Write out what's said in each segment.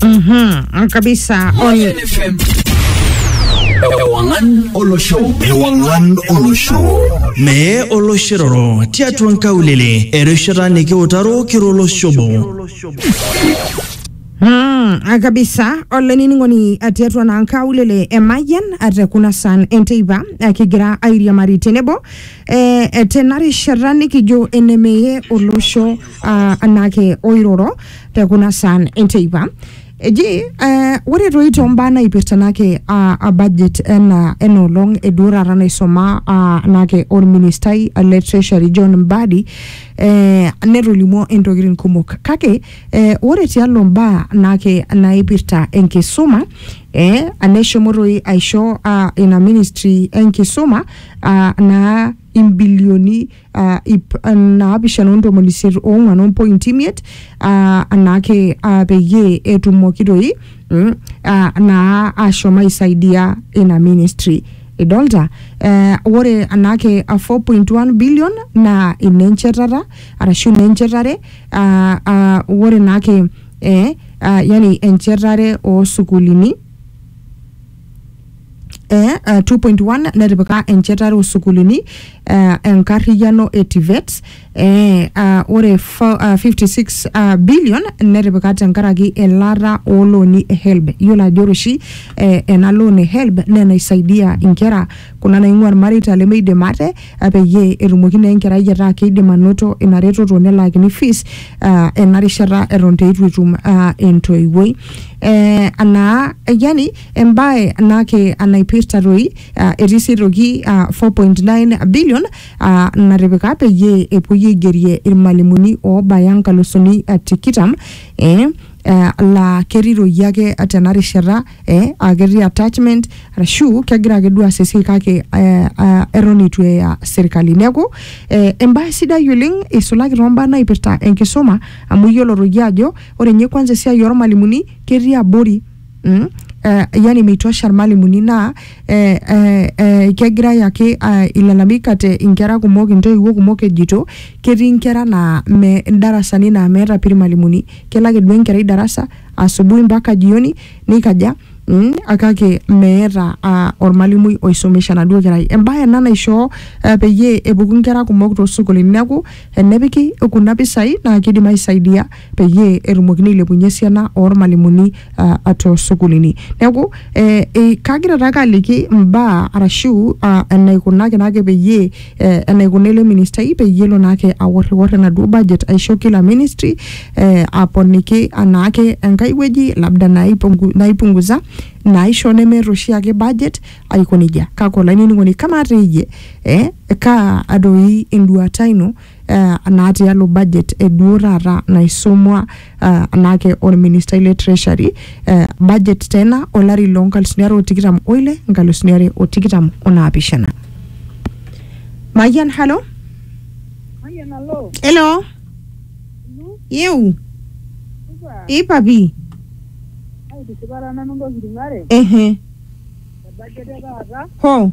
Mhm, kabisa Oye. Ewangan Olosho. Ewangan Olosho. Mee oloshiroro tiatua nkaulele erishata nikiutaro kiro olosho obo. Mm, ah, kabisa olainining'oni ah, tiatua naa nkaulele emayian ah, te kuna san enteipa ah, kigira airiamari tenebo eh, eh, tena rishata nikijo enemeye olosho ah, anake oiroro te kuna saan enteipa eji eh, ore toi tombaa naipirta nake ah, ah, budget ena ena olong eduo taata naisoma ah, nake orministai le treasury john mbadi eh, netolimuo intokitin kumok kake eh, ore tialo mbaa nake naipirta enkisuma eh, neshomo toi aisho ah, ina ministry enkisuma ah, naa imbilioni uh, ip uh, naapishana ontomoni isiet oong'wan ompointi imiet uh, anaake uh, peyie etumoki toi mm, uh, naa ashom aisaidia ina ministry idolta uh, ore anaake uh, 4.1 billion naa inenchetata arashu inenchetare uh, uh, ore naake eh, uh, yani enchetare oosukulini eh, uh, 2.1 netipika enchetare osukulini uh, enkarriyiano e TVETs eh, uh, ore fo- uh, 56 uh, billion netipika tenkaraki elaata oolooni e HELB yiolo ajo ore oshi eh, ena loan e HELB naa enaisaidia inkera kuna naing'ua irmareita lemeidim ate uh, peyie etumoki naa enkerai ataa keidim anoto ina retoto nelaakini fees uh, ena rishata eton teitu etum uh, entoiwuoi eh, anaa yani embae ena ake naipirta toi ah, etii sii aitoki ah, 4.9 billion ah, natipika peyie epuoi aigerie irmalimuni oobaya nkalusuni ah, tikitam eh, eh, laa ketii toi ake tena rishata eh, aa ketii attachment arashu kegira ake duo aas esiai kake eh, ah, eton eitu eya serkali neeku eh, embae sidai oleng eisulaki toombaa naipirta enkisuma amu iyiolo toi ajo ore ninye kwanza esiai ormalimuni ketii abori mm? Uh, yani meitosha irmalimuni naa eh, eh, eh, kegirai ake uh, ilalamika te inkera kumok intoiwuo kumok ejito ketii inkera naa me darasani naa meeta pii irmalimuni kelo ake duo enkerai darasa asubuhi mpaka jioni nikaja Mm, kake meeta uh, ormalimui oisomesha enaduo kerai embaye ena naishoo uh, peyie epuku inkera kumok toosukulini neeku enepiki kuna pisai naa kidim aisaidia peyie etumokini ailepunye esiana ormalimuni uh, tosukulini neeku eh, eh, kagira taake aliki mbaa arashu uh, enaikunaki naake peyie eh, enaikuna ele ministai peyie elo naake aworriwor enaduo budget aisho kila ministry eh, aponiki anaake enkae wueji labda naipungu, naipunguza naisho nemeeta oshiake budget aiko nejia kake olainining'oni kamaa teeyie eh, kaa adoi enduata ino eh, naa tialo budget e duo taata naisomwa eh, naake olministai le treasury eh, budget tena olari loo nkalusuni are o tikitam oile nkalusuni are o tikitam o naapishana mayian halo Mayian alo. elo Inu, yeu supa. ipapi Aitishipara nanu ntokitin are. ehe Ebajet e taata. ho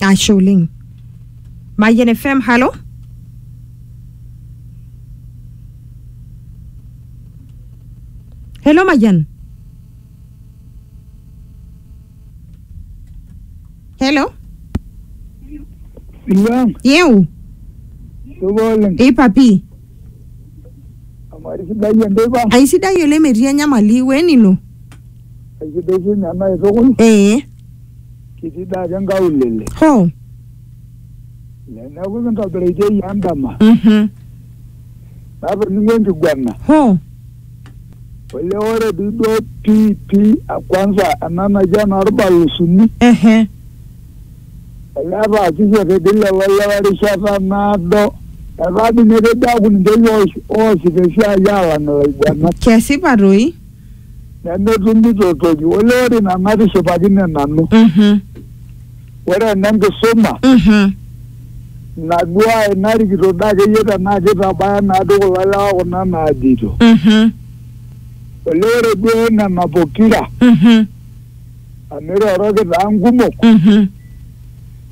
ashe oleng mayian fm halo helo mayian helo Ilang, yeu supa oleng. ipapi Amari sidai enteipa, aisidai oleng metii enyamali wenino aisidai sinye ena itukul. ee kiti daa te nkaulele Hoo. neeku kintobiraitie iyie endama Mhm. natoning'o enkiguana Hoo. ole ore dii duo pii pii kwanza ena naji enorbalusuni Ehe. ole etaasishe tedi lelo lewa erishata naado etaa dii ninye kejo aaku ninche oshi oosita esiai alang ilaiguanak Kesipa toi. nemetumito toki olee ore ina natishipakine nanu Mhm. ore ena enkisuma Mhm. naduaa narikito daa akeyie tenaa kitabaya naado kulo lewa kuna naajeito Mhm. olee ore duo nena pokira Mhm. amu iroroki taa nkumok Mhm.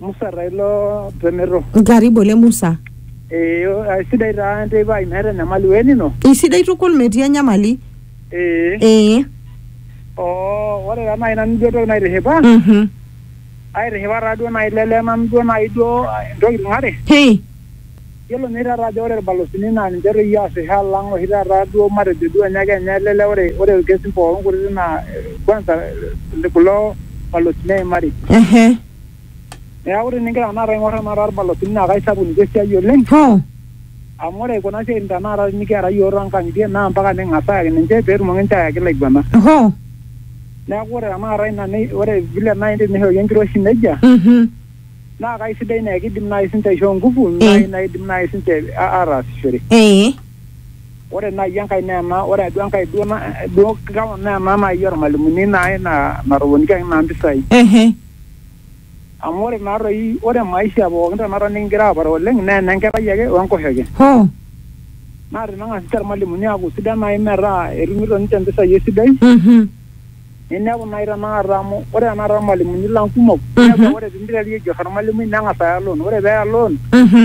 Musa Railo Tremero. Karibu ole Musa. Eh, aisidai taa enteipa ai meeta enyamali we nino. Isidai tukul metii enyamali. Eh. Eh. Oh, ore taa naaji nanu duo entoki naitishipa. Mhm. Aitishipa taa duo naaji lele nanu duo naaji duo intokitin are. Hii. Yiolo ninye taata ajo ore irbalozini naa ninche doi oasisho alang oshi taata duo matejo duo ninye ake ninye lele ore ore irkesin pookin kutitik naa eh, kwanza eh, kulo balozini eimari. Ehe. Neeku tinigira tenakata aing'or tenakata irmalasini naa kaisapuk ninche esiai oleng Hoo. amu ore kuna siaitin tenakata tinikiata iyiook toonkang'itie naa mpaka ning'as ayaki ninche peetumoki ninche ayaki ilaiguanak. Hoo. Neeku ore tenakata ina nei ore vile naai tenishori enkiroshi neija Mhm. naa kaisidai naa kiidim naai siinche aishoo nguvu naai naidim naai siinche aataasishore. Ee. Ore naaji enkae naa ena, ore duo enkae duo na duo kewon naa ena naaji ormalimuni naai na natoponikiaki naa mpisai. Ehe. Amu ore naa toi ore maisha pookin tenakata nikingira aapare oleng naa ene nkerai ake we nkoshoke. Hoo. Naa teneng'as ninche irmalimuni aaku sidan naai metaa etumito ninche mpisai esidai Mhm. ninepu naai tenakata amu ore tenakata irmalimuni lang kumok, inepu aa ore piinteru aiger ormalimui neng'as aya loan. Ore peeya loan Mhm.